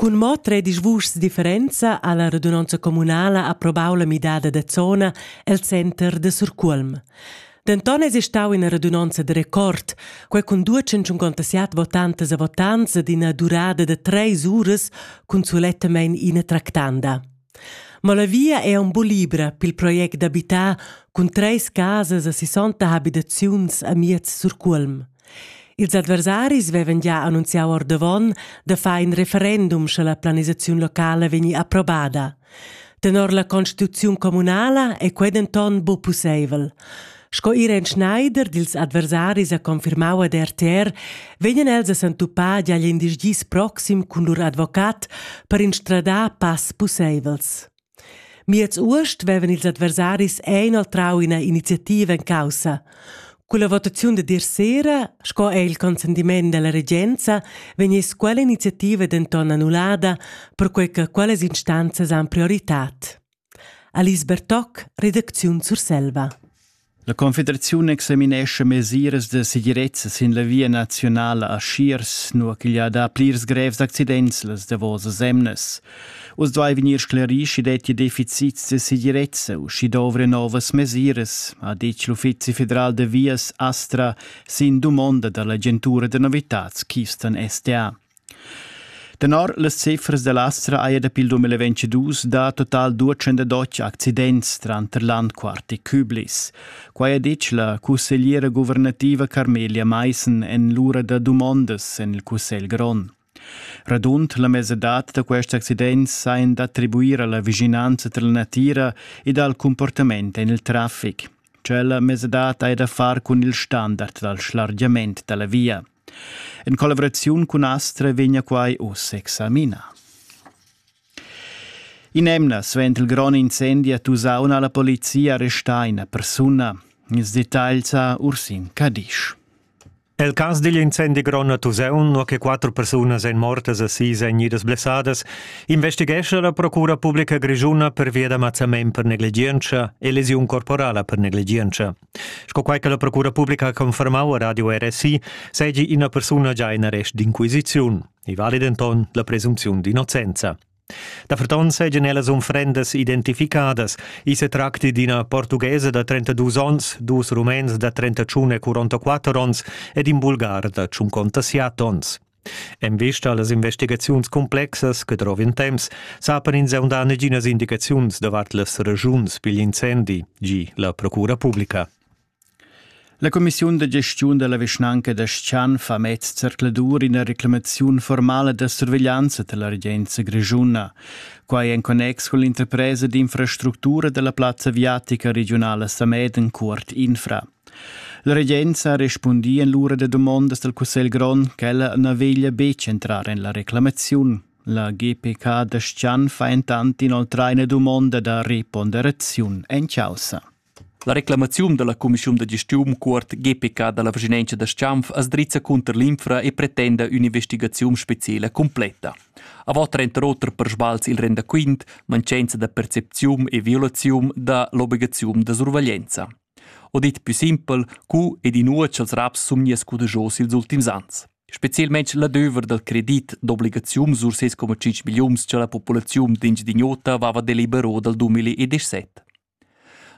Cun mo tredisch vuschs differenza ha la radunonza communala approbau la midada da zona el center da Surcuolm. Denton eis stau ina radunonza de record, quei cun 257 votantas e votants ed ina durada da treis uras cun sulettamein ina tractanda. Ma la via è aunc buc libra pil project d'abitar cun treis casas e sessonta habitaziuns a miez Surcuolm. Ils adversaris vevan gia annunziau ordavon da far in referendum sche la planisaziun locala vegni approbada. Tenor la constituziun communala è quei denton buc pusseivel. Sco Irene Schneider dils adversaris ha confirmau ad RTR, vegnan els a s'entupar agl in dis gis proxim cun lur advocat per instradar pass pusseivels. Miez uost vevan ils adversaris inoltrau ina iniziativa en caussa. Con la votaziun de dir sera, sco è il consentiment della regenza, vegniss quella iniziativa denton annullada, perquei che quellas instanzas han prioritad. Alice Bertoc, redacziun Surselva. La Confederaziun examinescha mesiras da segirezza sin la via naziunala a Schiers, nua ch'igl ha dà plirs grevs accidents las davosas emnas. Uss duai vegnir sclarì sch'i dettia deficits da segirezza u sch'i dovria novas mesiras, ha ditg l'Uffizi federal da vias Astra sin dumonda da l'agentura da novitads Keystone SA. Tenor las cifras da l'Astra haja dapi il 2022 dà total 212 accidents tranter Landquart e Küblis. Quai ha ditg la cussegliera guvernativa Carmelia Maissen en l'ura da dumondas en il Cussegl grond. Radund la mesadad da questi accidents sajan d'attribuir a la vischinanza tra la natira ed al cumportament en il traffic. Tschella mesadad ha da far cun il standard dal schlargiament da la via. En collaboraziun cun Astre vegna quai uss examinà. In'emna suenter il grond incendi a Tusaun ha la polizia arrestà ina persuna. Ils dettagls a Ursin Cadisch. El cas digl incendi grond a Tusaun, nua che quattro persunas èn mortas a sis èn idas blessadas, investighescha la Procura Publica Grischuna pervia da mazzament per negligientscha e lesiun corporala per negligientscha. Sco quai che la procura publica ha confermau a Radio RSI, seigi ina persuna già in arrest d'inquisiziun. I vali denton la presunziun d'innocenza. Da ferton seigien ellas unfrendas identificadas. I se tracti d'ina portughesa da 32 onns, dus rumens da 31 e 44 onns ed in bulgar da 57 onns. En vista a las investigaziuns cumplexas che drov in temps, sapan ins aundà neginas indicaziuns davart las regiuns pigl incendi, gi la Procura publica. La Commissiun da gestiun della vischnanca da Schchan fa mez zercladur ina reclamaziun formala da surveglianza della regenza grigiuna. Quai en connex con l'interpresa d'infrastructura della plazza viatica regionala Sameden Cuort Infra. La regenza respundia en l'ura da dumondas dal Cussegl grond ch'ella na veglia betg entrar en la reclamaziun. La GPK da Schan fa entant inoltrar ina dumonda da reponderaziun en chaussa. La reclamaziun dalla cumissiun da gestiun cuort GPK dalla Vischinenza da Schanf as drizza cunter l'infra e pretenda ün'investigaziun speciela completa. Avant trenta oter per sbals il rendaquint, mancenza da percepziun e violaziun da l'obligaziun da survaglienza. O dit pü simpel, cu ed inua cha'ls raps sun gnius cudegios ils ultims ans. Specielmaing l'adöver dal credit d'obligazium sur ses 1,5 milliuns cha la populaziun d'Engiadin'Ota aveva delibero dal 2017.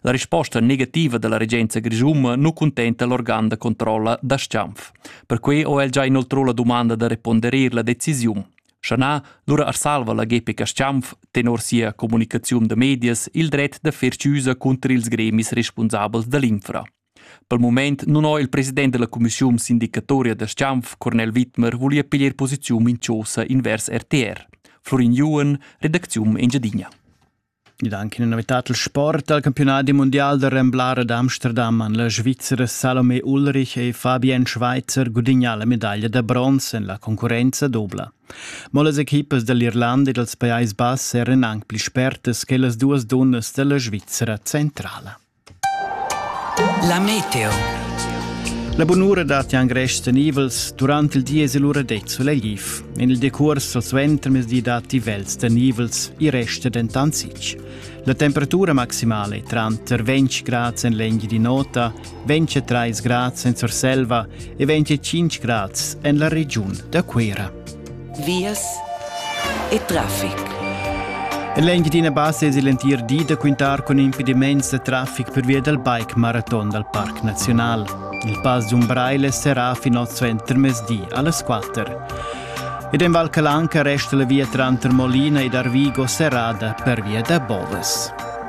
La risposta negativa da la regenza grischuna nu cuntenta l'organ da controlla da Schanf. Perquai ho el già inoltrò la dumanda da reponderer la decisiun. Scha na, lura as salva la Gepica Schampf tenor sia comunicaziun da medias il dret da fer chiusa cunter ils gremis respunsabels da l'infra. Pel mument nun ho il president da la cumissiun sindicatoria da Schampf, Cornel Wittmer, voglia piglier posiziun in chosa invers RTR. Florin Juhen, redacziun Engiadina. Ed anche una novità dal sport al campionat mundial da Remblar ad Amsterdam han la Svizra Salome Ulrich e Fabian Schweizer gudignà la medaglia da bronz en la concurrenza dubla. Mo las equipas dall'Irlanda e dals Pajais Bass eran anc pli spertas che las duas dunnas dalla Svizra centrala. La meteo. La bunura datti anche stenivels durante il di e l'ura det solegif. In il decurs o suenter mezdi datti vels stenivels, i resta dentant sic. La temperatura maximale tranter 20 grad en l'enghi di nota, 23 grad en Surselva e 25 grad en la regiun da Cuera. vias e traffic. L'Engiadina Bassa es l'entir di da quintar cun impedimaints da traffic pervia dal bike maraton dal Parc Naziunal. Il Pass d'Umbraile serà fin oz entermezdi alles 4. Ed en Val Calanca resta la via tranter Molina ed Arvigo serrada per via da Boves.